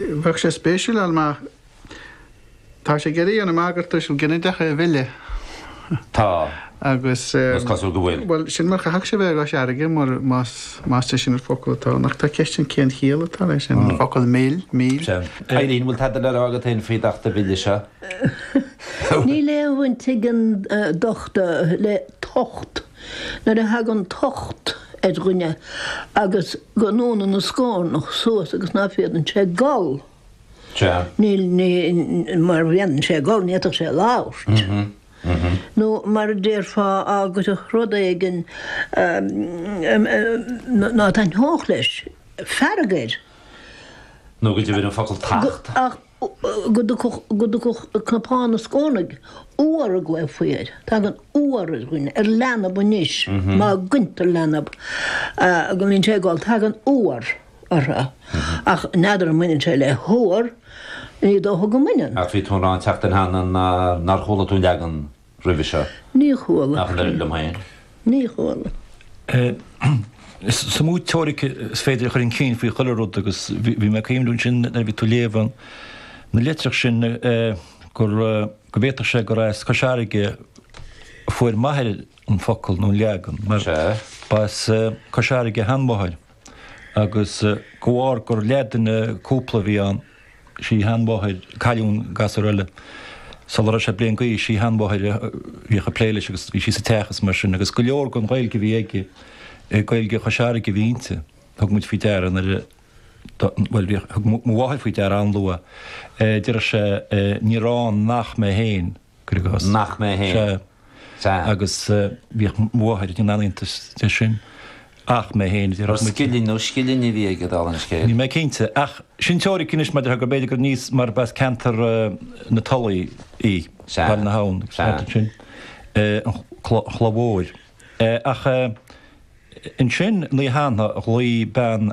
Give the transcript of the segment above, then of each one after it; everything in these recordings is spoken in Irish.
Bheadh sé spéisiúil, an mbeadh? Tá sé ag iarraidh an amharc ar tuisil ginideacha a mhilleadh. Tá, agus is cosúil go bhfuil. Bhuel, sin mar chaithfeadh sé bheith i gCois Fharraige, mar más de sin an focal atá ann. Ach tá ceist ann cén chiall atá leis sin, an focal mill, mil. Cailín, bhfuil tada le rá agat fhéin faoin Acht a' Bhille seo? Níl aon bhaint ag an Acht le tocht. Nuair a thagann tocht ar dhuine agus go ndúnann a scórnach suas agus ná féadann sé gol, níl ní, mar bhaineann sé gol, ní fhéadfadh sé labhairt. Nó mar a déarfá, á go dtiocfadh rud éigin ná taitneodh leis, fearg air. Nó go dtiubhraidh an focal tacht. go dtiocfadh, go dtiocfadh cnapán ina scornaigh, uabhar a ghlaofaí air. Tagann uabhar ar dhuine, ar leanbh anois, má cháintear leanbh, go mbíonn sé ag gol, tagann uabhar orthu. Ach n'fheadar an mbaineann sé le huabhar, ní dócha go mbaineann. Ach bhí tú ag rá an tseachtain cheana nár chuala tú an leagan roimhe seo. Ní chuala. Nach n-oireann liom féin. Ní chuala. Is mó teoiric is féidir a chur chun cinn faoi chuile rud agus bhí mé ag cuimhniú ansin nuair a bhí tú ag léamh na litreach sin gur, go bhféadfadh sé gur as Cois Fharraige a fuair m'athair an focal nó an leagan mar ba as Cois Fharraige a sheanmháthair agus de bharr gur leathdhuine cúpla a bhí ann, sheanmháthair, cailleadh an gasúr eile. Sula raibh sé bliain d'aois, sí a sheanmháthair a bhíodh ag plé leis agus bhí sí sa teach is mar sin agus go leor den Ghaeilge a bhí aige, Gaeilge Chois Fharraige a bhí inti. Thug muid faoi deara nuair a, bhuel, bhí, thug mo mháthair faoi deara an-luath, deireadh sé, 'Níor fhan nach mé féin. cuir i gcás. Nach mé féin. Sea. Sea. Agus bhíodh mo mháthair ag déanamh iontais de sin. Ach mé féin, déarfadh muid. Ar scilling nó scillinge a bhí aige, dála an scéil? Níl mé cinnte. Ach sin teoiric anois maidir le go mb'fhéidir gur níos, mar ba as ceantar na Tulaí í, Baile na hAbhann, an ceantar sin, an Chloch Mhóir. Ach ansin, an oíche cheana, ghlaoigh bean,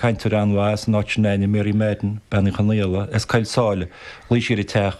cainteoir an-mhaith as an áit s'againne, Mary Madden, Bean Uí Chonaola, as Coill Sáile, ghlaoigh sí ar an teach,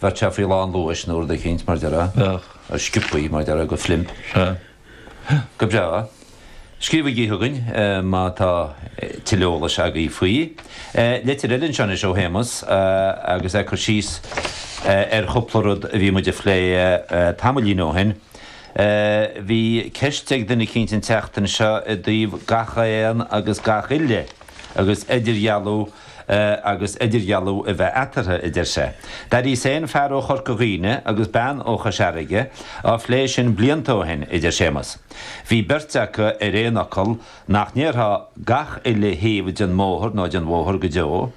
Bheadh sé faoi lán luais nó rud eicínt mar a déarfá. Bheadh. Ar sciobthaí, mar a déarfá, de phlimp. Sea. Go breá. Scríobhaigí chugainn má tá tuilleadh eolais agaibh faoi. Litir eile anseo anois ó Shéamus agus é ag cur síos ar chúpla rud a bhí muid a phlé tamaillín ó shin. Bhí ceist ag duine eicínt an tseachtain seo i dtaobh gach aon agus gach uile agus idirdhealú agus idirdhealú a bheith eatarthu, a deir sé. D'airigh sé an fear ó Chorca Dhuibhne agus bean ó Chois Fharraige á phlé sin blianta ó shin, a deir Séamus. Bhí beirt acu ar aon fhocal nach ndéarfá gach uile thaobh den mbóthar nó den bhóthar go deo,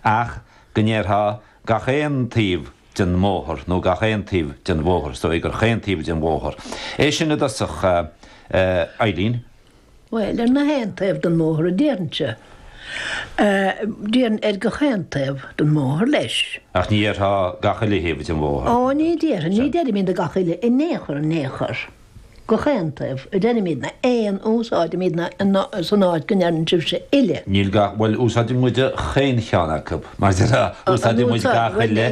ach go ndéarfá gach aon taobh den mbóthar nó gach aon taobh den bhóthar, is dóigh gur chaon taobh den bhóthar é sin i dtosach, a Eileen? Bhuel, ar na haon taobh den mbóthar a déarfainnse. Déarfainn ar gach aon taobh den mbóthar leis. Ach ní dhéarfá gach uile thaobh den bhóthar. Ó, ní déarfainn, ní deirimidne gach uile, in aon chor, in aon chor. Gach aon taobh, a deirimidne, aon, úsáidimidne san áit go ndeireann sibhse uile. Níl gach, bhuel, úsáideann muide chaon cheann acu, mar deir, úsáideann muid gach uile,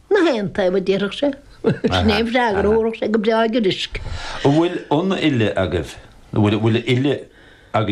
Na haon taobh a déarfadh sé. Sin é an freagra a thabharfadh sé go breá giorraisc. An bhfuil an uile agaibh?